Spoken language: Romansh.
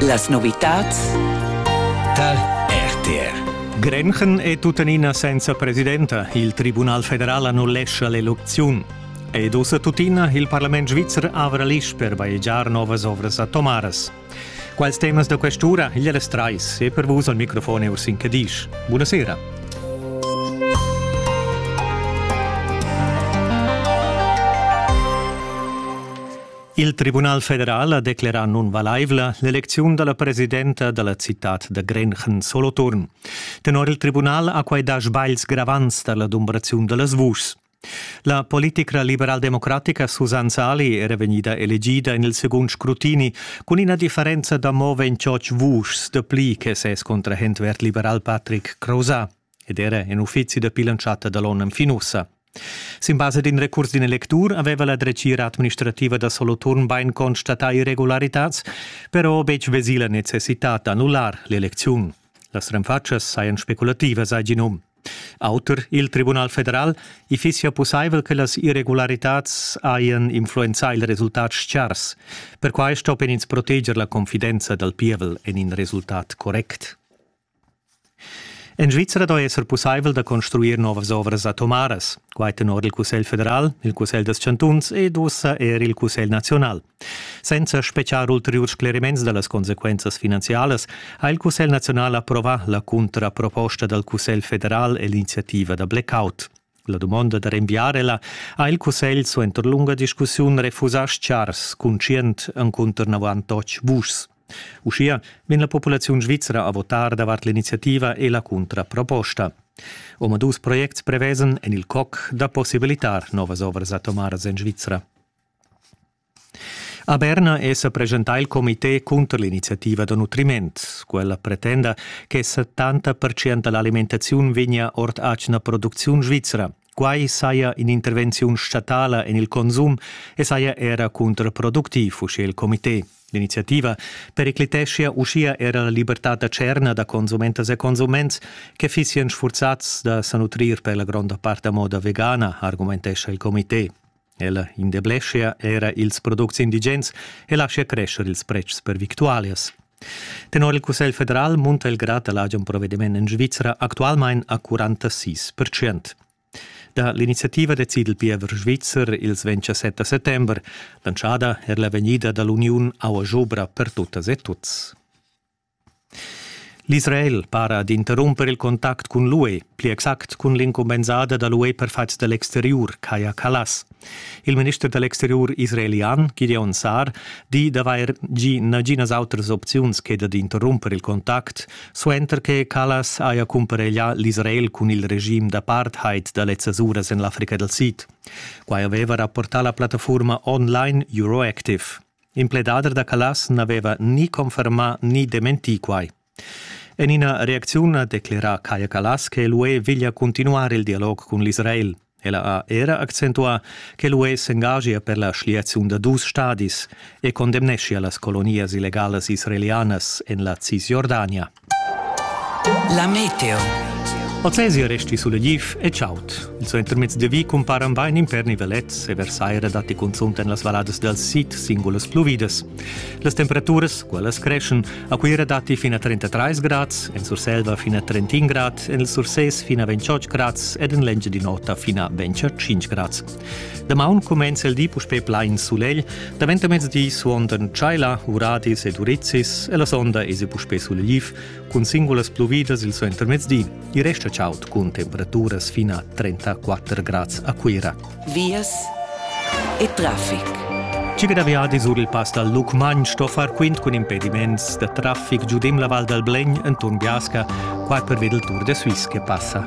Las novitads tal RTR. Grenchen è tuttenina senza presidenta. Il Tribunal federal annullescha l'elecziun. Ed ussa tuttina il parlament svizzer avra l'isch per bajegiar novas ovras a Tomaras. Quals temas da quest'ura? Il Res 3 e per vus al microfon è Ursin Cadisch. Buonasera. Il Tribunal federal ha declerà nunvalaivla l'elecziun da la presidenta da la citad da Grenchen Soloturn. Tenor il tribunal ha quai dà sbagls gravants tar l'adumbraziun da las vuschs. La politica liberaldemocratica Susanne Sali era vegnida elegida en il segund scrutini cun ina differenza da mo 28 vuschs dapli che ses contrahent verd-liberal Patrick Crozat ed era en uffizi da pilantschata da l'onn fin ussa. Sin basa d'in recurs d'in electur aveva la dretgira administrativa da Soloturn bain constatà irregularitads, però betg vesì la necessitad d'annullar l'elecziun. Las renfatschas sajan speculativas, hai gì num. Auter il Tribunal federal, i fissia pussaivel che las irregularitads hajan influenzà il resultat chars. Perquai stoppian ins proteger la confidenza dal pievel en in resultat correct. En Svizra doi esser pussaivel da construir novas ovras atomaras, quai tenor il Cussegl federal, il Cussegl dels chantuns ed ussa er il Cussegl naziunal. Senza speciar ulteriurs scleriments da las consequenzas finanzialas ha il Cussegl naziunal approvà la cuntraproposta dal Cussegl federal e l'iniziativa da blackout. La dumonda da renviar ella ha il cussegl suenter lunga discussiun refusà Schars conscient encunter navantotg vuschs. Uschia vegn la populaziun svizra a votar davart l'iniziativa e la cuntraproposta. Omadus projects prevesen en il coc da possibilitar novas ovras atomaras en Svizra. A Berna è sa presentà il comité cunter l'iniziativa da nutriment. Quella pretenda che 70 da l'alimentaziun vegnia ord atgna producziun svizra. Quai saja in'intervenziun statala en il consum e saja era contraproductiv, uschè il comité. L'iniziativa pericliteschia uschia era la libertad da tscherna da consumentas e consuments che fissian sfurzats da sa nutrir per la gronda part a moda vegana, argumentescha il comité. Ella indeblescha era ils products indigens e laschia crescher ils pretschs per victualias. Tenor il Cussegl federal munta il grad da l'agen provediment en Svizra actualmain a 46 percent. Da l'iniziativa decide il piever svizzer ils 27 settember, lanciada er la vegnida da l'uniun Aua Jobra per tuttas e tuts. L'Israel para d'interrumper il contact cun l'UE, pli exact cun l'incumbensada da l'UE per fatgs da l'exteriur, Kaya Kallas. Il minister da l'exteriur israelian, Gideon Saar, di d'avair gì naginas autras opziuns che dad interrumper il contact, suenter che Kallas haja cumpareglià l'Israel cun il regim d'apartheid da lezzas uras en l'Africa dal Sid. Quai aveva rapportà la plattafurma online Euroactive. In pledader da Callas n'aveva ni confermà ni dementì quai. En ina reacziun ha declerà Kaya Callas che l'UE veglia continuar il dialog cun l'Israel. Ella ha era accentuà che l'UE s'engagia per la schliaziun da dus stadis e condemneschia las colonias illegalas israelianas en la Cisjordania. La meteo. Ozesia resti sulegliv e chaud. Il suo intermezzo di vi comparan bain in per nivelets e versaira datti cunzunt en las valladas dal sid singulas pluvidas. Las temperaturas, quellas creschen, a Cuira datti fino a 33 grads, en Surselva fino a 31 grad, en il Surses fino a 28 grads ed en Lengia di nota fino a 25 grads. Damaun cumenza il di puspè plain sulegl, daventa mezdi suondan tschaila, uradis ed urizis e la sonda es puspè sulegliv cun singulas pluvidas il suentermezdi. I resta chaud cun temperaturas fin a 34 grads a Cuira. Vias e traffic. Cica da viadi sur il pass dal Lucmagn sto far quint cun impediments da traffic giudim la Val dal Blegn enturn Biasca, qua per ved il Tour de Suisse che passa.